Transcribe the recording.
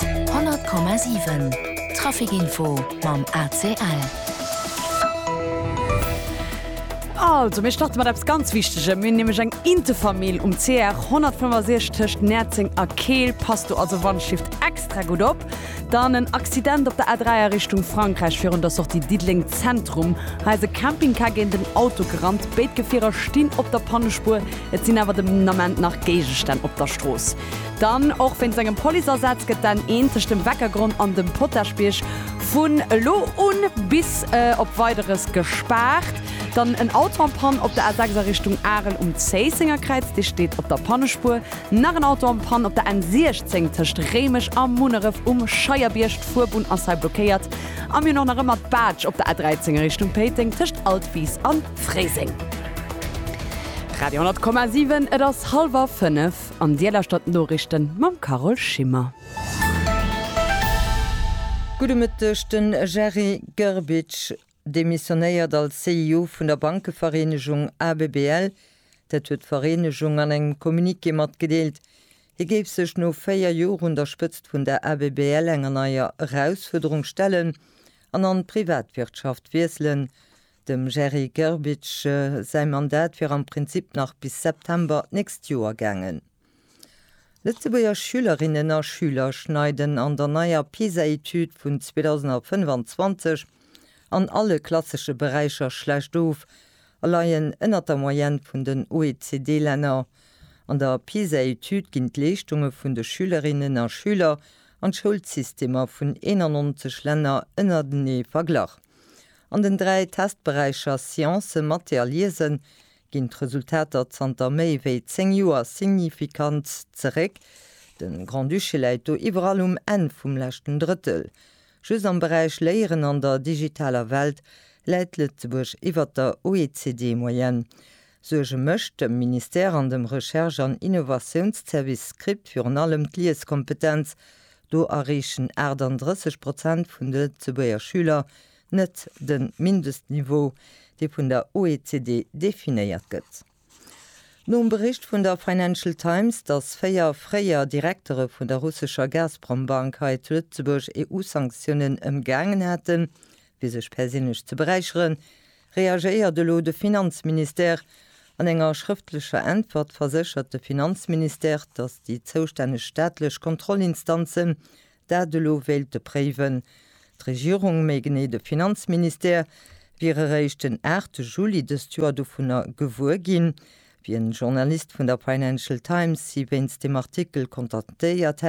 100,7 Trafic Info mam ACL. Also mir starte mat eppes ganz Wichtegem. Mir hunn nämlech eng Intefamill um CR 165 tëscht Näerzeng a Keel. Pass do also wandshift extra gutt op. Dann en Accident op der A3 a Richtung Frankräich virun der Sortie Diddeleng Zentrum. Hei ass e Campingcar géint en Auto gerannt. Béid Gefierer stinn op der Pannespuer. Et sinn awer den Ament nach Géigestänn op der Strooss. Dann och wéint sengem Policeasaz gëtt dann eenzeg dem Weckergronn an dem Potagebierg vun elo un bis op Weideres gespaart. Dann en Auto am Pann op der A 6 a Richtung Arel um Zéisséngerkräiz, dee steet op der Pannespuer. Nach en Auto am Pann op der N 16 tëscht Réimech a Munneref um Scheierbierg, d'Fuerbunn ass hei blockéiert. A mir hunn och nach ëmmer d'Baatsch op der A 13 a Richtung Péiteng tëscht Altwiis a Fréiseng. Radio 10,7 Et ass hallwer 5. An dir lauschtert d'Norichten mam Carole Schimmer. Gudde Mëtteg, Den Jerzy Grbic demissionéiert als CEO vun der Bankevereenegung ABBL. Dat huet d'Vereenegung an engem Communiqué matgedeelt. Hie géif sech no 4 Joer un der Spëtzt vun der ABBL enger neier Erausfuerderung stellen an an d'Privatwirtschaft wiesselen. Dem Jerry Grbic säi Mandat wier am Prinzip nach bis September d'nächst Joer gaangen. Lëtzebuerger Schülerinnen a Schüler schneiden an der neier PISA-Etüd vun 2025 an alle klassesche Beräicher schlecht of a leien ënnert der Moyenne vun den OECD-Länner. An der PISA-Etüd ginn d'Leeschtunge vun de Schülerinnen a Schüler an d'Schoulsystemer vun 91 Länner ënnertenee verglach. An den dräi Testberäicher Science, Mathé a Liesen ginn d'Resultater zanter méi wéi zéng Joer signifikant zeréck. De Grand-Duché läit do iwwerall um Enn vum leschten Drëttel. Just am Beräich Léieren an der digitaler Welt läit Lëtzebuerg iwwert der OECD-Moyenne. Suerge mécht dem Ministère an dem Recherche an Innovatiounsservice SCRIPT virun allem d'Lieskompetenz. Do erreechen 38 Prozent vun de Lëtzebuerger Schüler net de Mindestniveau, dee vun der OECD definéiert gëtt. Nom Bericht vun der Financial Times, dass véier fréier Direktere vun der russescher Gazprom-Bank hei zu Lëtzebuerg EU-Sanktiounen ëmgaangen hätten, fir sech perséinlech ze beräicheren, Reagéiert elo de Finanzministère? An enger schrëftlecher Äntwert verséchert de Finanzministère, datt déi zoustänneg staatlech Kontrollinstanzen dat elo wéilte préiwen. D'Regierung, méi genee de Finanzministère, wier eréischt den 8 Juli dëst Joer dovunner gewuer ginn, wéi en Journalist vun der Financial Times si wéinst deem Artikel kontaktéiert hätt.